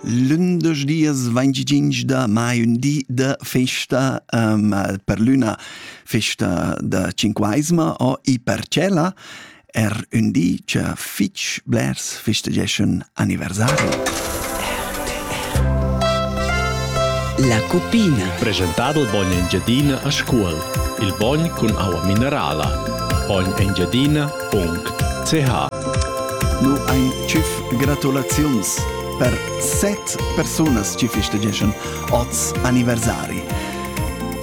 Lündesch dias 25 da mai, ün di da festa um, per l'üna festa da Cinquaisma o i Parcella, er ün di cha fich blers festegeschan anniversari. La cupina. Presentado il bogn Engiadina a Scuol. Il bogn cun aua minerala. Bogn Engiadina Nu ein tschüf gratulaziuns per set persunas chi festegeschan oz anniversari.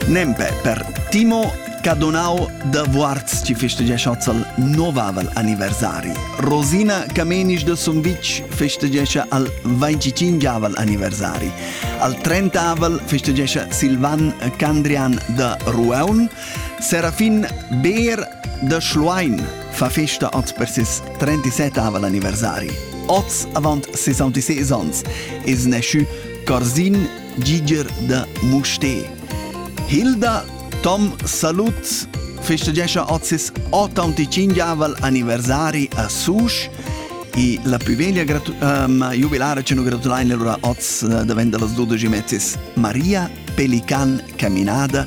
Nempe per Timo Cadonau da Vuarz ci festegesce al novavel anniversari. Rosina Camenisch de Sumvitg festegesce al 25avel anniversari. Al 30avel festegesce Silvan Candrian de Rueun. Serafin Beer Da Schluein fa festa oz per ses 37 anniversari. Oz, avant 66 onns, es naschü Corsin Giger da Musté. Hilda Tom Salut festegescha oz ses 85 anniversari a Susch e la più veglia gratu- ehm, jubilare ci nu gratulain lura oz eh, davent da las 12 mezzes Maria Pelican Caminada